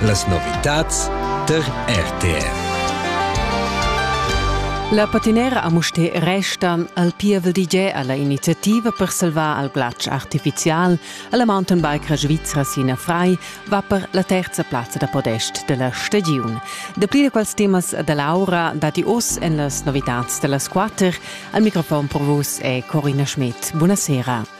Las novitads tar RTV. La patinera a Mustér restan al pievel DJ alla iniziativa per salvar al glatsch artificial alla mountainbikera svizra Sina Frei va per la terza plazza da podest della stagiun. Da plir quals temas da Laura dati oss en las novitads della squatter. Al microfon per vos è Corina Schmidt. Buonasera.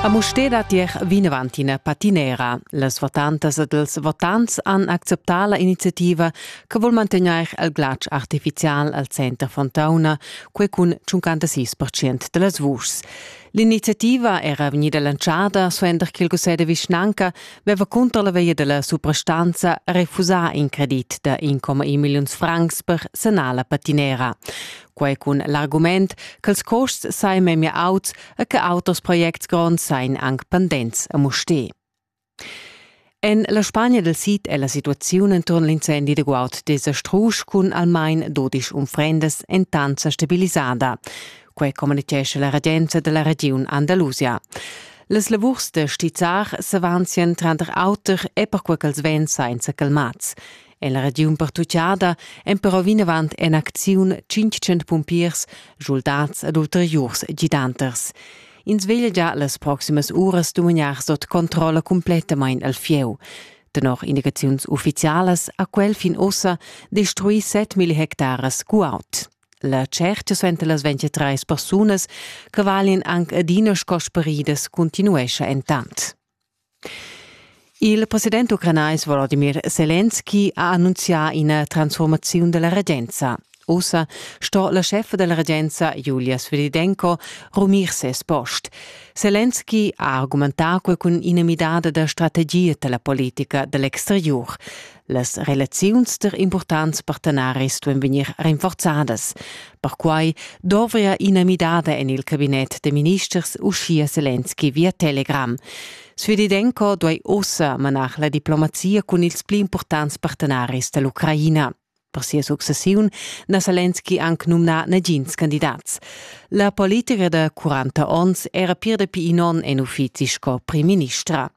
A Mustér dat ier vinavant ina patinera. Las votantas ed els votants han acceptà la iniziativa che vul mantegnair il glatsch artificial al center Fontauna, quei cun 56% da las vuschs. L'iniziativa era vegnida lanciada suenter ch'il cussegl de vischnanca veva cunter la via della suprastanza refusà in credit da 1,1 milliuns francs per sanar la patinera. Quei cun l'argument ch'els costs sai memia auts e che auters projects gronds sain anc pendents a Musté. En la Spagna del Sid è la situaziun intorn l'incendi de Guaud desastrusch cun almain 12 unfrendas entant stabilisada. Quei communicescha la regenza dalla regiun Andalusia. Las lavurs da stizzar s'avanzien tranter auter e perquei ch'els vegn sainza calmats. En la regiun pertuccada èn però vinavant en acziun 500 pumpiers, soldats ed ulteriurs gidanters. Ins veglia già las proximas uras dumagnar sot controlla completamain al fieu. Tenor indicaziuns uffizialas ha quel fin ussa destruì 7.000 hectares guaud. La tscherta suenter las 23 persunas che valin anc adina sco speridas continuescha entant. Il president ucranais Volodymyr Selenski ha annunzià ina transformaziun della regenza. Ussa sto la scheffa della regenza Julia Svedidenko rumir ses post. Selenski ha argumentà quei cun ina midada da strategia della politica dell'exteriur. Las relaziuns der importants partenaris duein vegnir rinforzadas. Perquai dovria ina midada en il cabinet de ministers uschia Selenski via Telegram. Sfedidenko duei ossa manar la diplomazia cun ils pli importants partenaris dell'Ucraina. Per sia successiun na Selenski anc numnà nagins candidats. La politica da 40 onns era pir dapi in onn en uffizi sco primministra.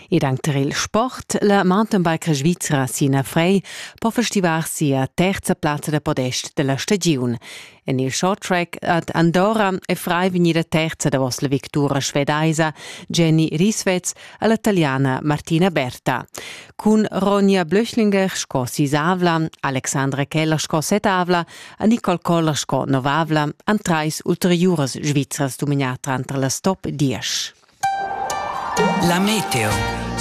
Ed anc tar il sport. La mountainbike svizra Sina Frey po festivar sia terza plazza da podest da la stagiun. En il short track ad Andorra è Frey vegnida terza davos la victura svedaisa Jenny Rieswetz e la taliana Martina Berta. Cun Ronja Blöchlinger sco sisavla, Alexandra Keller sco setavla e Nicole Koller sco novavla han trais ulteriuras svizras dominà tranter las top diesch. La meteo.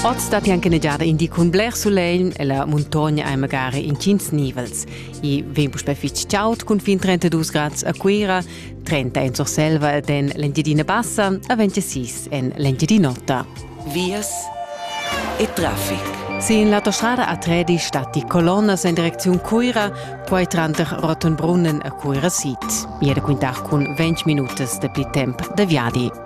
Oz datti anche negiada in di cun bler sulegl e la muntogna è magari in tschintg nivels. I vegn puspè fitg chaud cun fin 32 grad a Cuira, 30 en Surselva ed en l'Engiadina Bassa a 26 en l'Engiadin'Ota. Vias e traffic. Sin l'autostrada a Tredi statti colonnas en direcziun Cuira, poi tranter Rottenbrunnen e Cuira Sid. Iede quintar cun 20 minutas de pli temp de viadi.